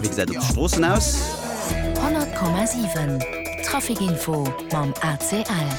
Wéi gesäit et op de Stroossen aus? 100,7 Trafikinfo mam ACL.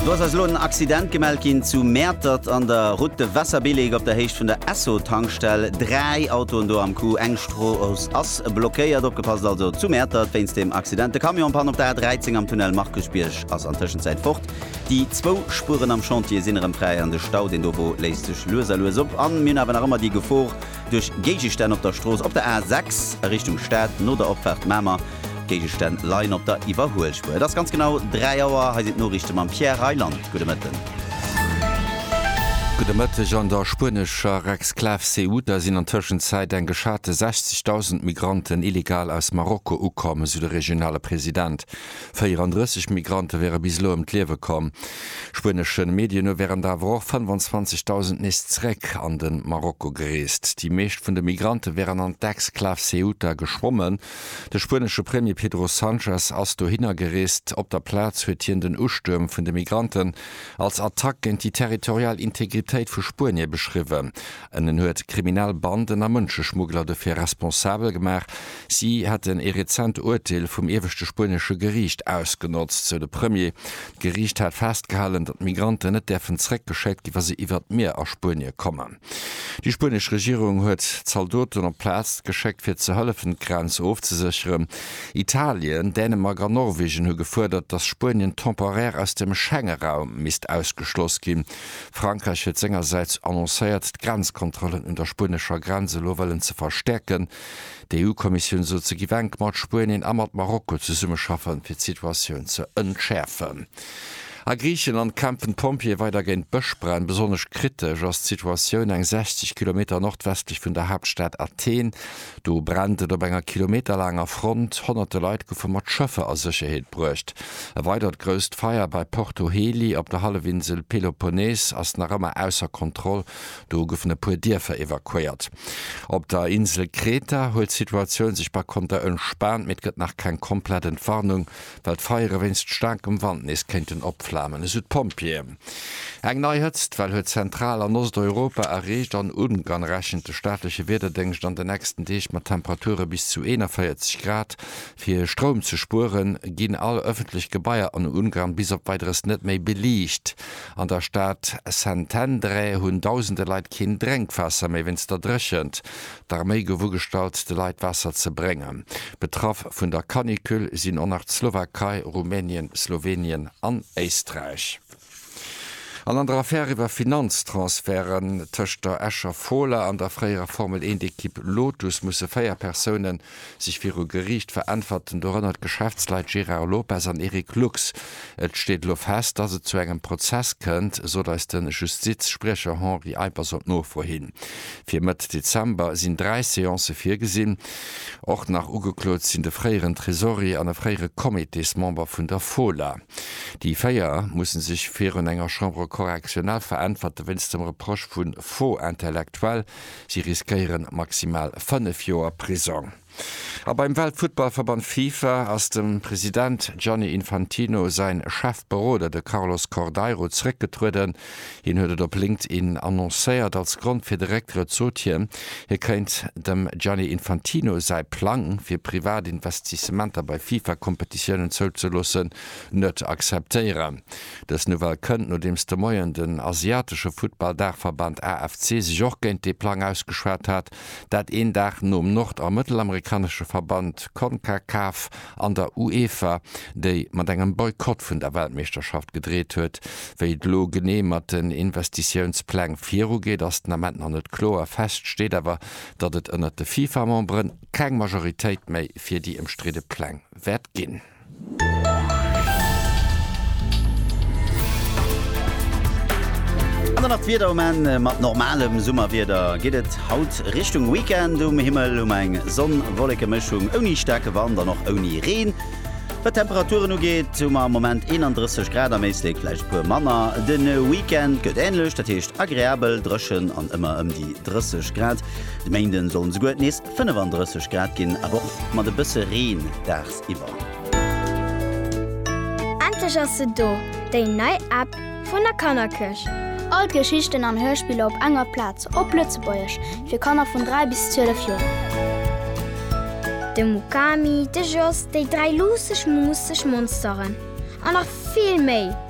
Do ass eis elo en Accident gemellt ginn zu Mäertert an der Route de Wasserbillig op der Héicht vun der Esso-Tankstell. Dräi Autoen do am Coup, eng Strooss ass blockéiert. Opgepasst also zu Mäertert wéinst dem Accident. De Camion en Panne op der A 13 am Tunnel Markusbierg ass an Tëschenzäit fort. Déi zwou Spueren am Chantier sinn erëm fräi an de Stau, deen dovu léisst sech lues a lues op. An mir hunn awer nach ëmmer déi Gefor duerch Géigestänn op der Strooss, op der A 6 a Richtung Stad, no der Opfaart Mamer. Géigestänn leien op der Iwwerhuelspuer. Et ass ganz genau 3 Auer. Hei sinn d'Noriichte mam Pierre Reyland. Gudde Mëtten. Gudde Mëtteg. An der spuenescher Exklav Ceuta sinn an Tëschenzäit eng geschate 60.000 Migranten illegal aus Marokko ukomm, esou de regionale President. 34 Migrante wäre bis elo ëm d'Liewe komm. Spuenesche Medien no wären der awer och 25.000 nees zeréck an de Marokko gereest. Déi meescht vun de Migrante wären an d'Exklav Ceuta geschwommen. De spuenesche Premier Pedro Sanchez ass dohinner gereest. Op der Plaz huet hien den Ustuerm vun de Migranten als Attack géint déi territorial Integritéit vu Spuenie beschriwwen. En huet kriminell Banden a Mënscheschmuggler dofir responsabel gemaach, Si hätten ee rezent Urteel vum ieweschte spuenesche Geriicht ausgenotzt, sou de Premier. D'Geriicht hat festgehalen, datt Migranten net däerfen zeréckgeschéckt gi wa se iwwert d'Mier a Spuenie kommen. Déi spuenesch Regierung huet Zaldoten op d'Plaz geschéckt, fir ze hëllefen, d'Grenz ofzesécheren. Italien, Dänemark an Norwegen hu gefuerdert, datt Spuenien temporaire aus dem Schengeraum misst ausgeschloss ginn. Frankräich huet sengersäits annoncéiert, d'Grenzkontrollen un der spuenescher Grenz elo wëllen ze verstäerken. D'EU-Kommissioun sot, se giff enk mat Spuenien a mat Marokko zesummeschaffen, fir d'Situatioun ze entschäerfen. A Griichenland kämpfen d'Pompjeeë weider géint Bëschbränn. Besonnesch kritesch ass d'Situatioun eng 60 Kilometer nordwestlech vun der Haaptstad Athen. Do brennt et op enger kilometerlaanger Front. Honnerte Leit goufe mat Schëffer a Sécherheet bruecht. E weidert grousst Feier bei Porto Heli op der Hallefinsel Peloponnes ass nach ëmmer ausser Kontroll. Do goufen e puer Dierfer evakuéiert. Op der Insel Kreta huet d'Situatioun sech par konter entspaant, mee et gëtt nach keng komplett Entwarnung, well d'Feiere wéinst staarkem Wand nees kéinten opflamen, esou d'Pompjeeën. Eng nei Hëtztwell huet Zentral an Osteuropa erreecht an Ungarn rechent de staatleche Wiederdéngscht an de nächsten Deeg mat Temperature bis zu 41 Grad. Fir Stroum ze spueren, ginn all ëffentlech Gebaier an Ungarn bis op Weideres net méi beliicht. An der Stad Szentendre hunn dausende Leit keen Drénkwaasser méi wéinst der Dréchent. D'Arméi gouf ugestallt, de Leit Waasser ze bréngen. Betraff vun der Canicule sinn och nach d'Slowakei, Rumänien, Slowenien an Éisträich. An an der Affär iwwer Finanztransferten tëscht der Escher Fola an der fréierer Formel-Eent-Ekipp Lotus musse véier Persounen Sech viru Geriicht veräntwerten dorënner d'Geschäftsleit Gérard Lopez an Eric Lux. Et steet elo fest, dass et zu engem Prozess kënnt, sot eis de Justiz-Spriecher Henri Eippers op Nofro hin. Fir Mëtt Dezember sinn dräi Seancë virgesinn. Och nach ugeklot sinn de fréieren Tresorier an e fréiere Comitésmember vun der Fola. Déi véier musse sech virun enger Chambre correctionnelle veräntwerte wéinst dem Reproche vu Faux intellectuel. Si riskéiere maximal fënnef Joer Prisong. A beim Weltfuttballverband Fifa ass dem President Gianni Infantino säin Chefberoder, de Carlos Cordeiro, zeréckgetrueden. Hien huet et op LinkedIn annoncéiert. Als Grond fir de Récktrëtt sot hien, hie kéint dem Gianni Infantino säi Plang, fir privat Investissementer bei Fifa-Kompetitiounen zouzeloossen, net akzeptéieren. Dës Nouvelle kënnt, nodeems de Moien den asiatesche Futtball-Daachverband AFC sech och géint dee Plang ausgeschwat hat, dat een Dag nom nord a mëttelamerikanesche Verband Concacaf an der UEFA, déi mat engem Boykott vun der Weltmeeschterschaft gedreet huet. Wéi et elo genee mat den Investitiounspläng virugeet, ass den Ament nach net kloer. Fest steet awer, datt et ënnert de FIFA-Memberen keng Majoritéit méi fir déi ëmstridde Pläng wäert ginn. An dann nach d'Wieder um Enn. Mat normalem Summerwieder geet et haut Richtung Weekend. Um Himmel hu mer eng Sonn-Wolleke-Mëschung ouni staarke Wand an och ouni Reen. Wat d'Temperaturen ugeet, hu mer am Moment 31 Grad, am Éislek vläicht e puer manner. De Weekend gëtt änlech, dat heescht agreabel dréchen an ëmmer ëm déi 30 Grad. De Méinden sollen esouguer nees 35 Grad ginn, awer och mat e bësse Reen daags. Endlech ass se do, déi nei App vun der Kannerkirch! All d'Geschichten an Hörspiller op enger Plaz, op Lëtzebuergesch, fir Kanner vun 3 bis 12 Joer. De Mukami, de Jos, déi dräi luusseg, muusseg Monsteren an nach vill méi!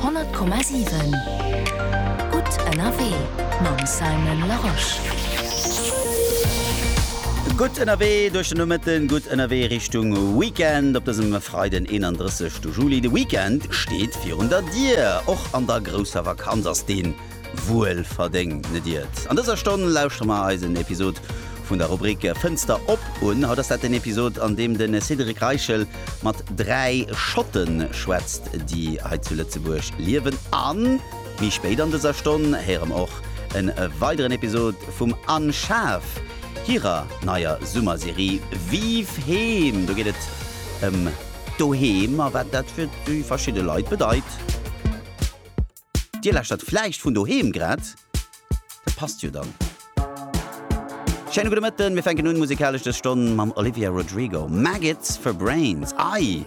100,7 Gutt ënnerwee mam Simon Larosche. Gutt ënnerwee duerch den Nomëtten, gutt ënnerwee Richtung Weekend op dësem Freiden 31 Juli. De Weekend steet virun der Dier. Och an der grousser Vakanz ass deen. wuel verdéngt, net iert? An dëser Stonn lauschtere mer eis en Episod vun der Rubrik Fënster op un. Haut ass dat den Episod, an deem de Cédric Reichel mat dräi Schotte schwätzt, déi hei zu Lëtzebuerg liewen. A méi spéit an dëser Stonn héiere mer och e weideren Episod vum Anne Schaaf hirer neier Summerserie Vive Heem. Do geet et ëm d'Doheem a wat dat fir déi verschidde Leit bedeit. Dir lauschtert vläicht vun doheem grad? Dat passt jo dann. Schéine gudde Mëtten. Mir fänken un musikalesch dës Stonn mam Olivia Rodrigo, Maggots for Brains. Ai!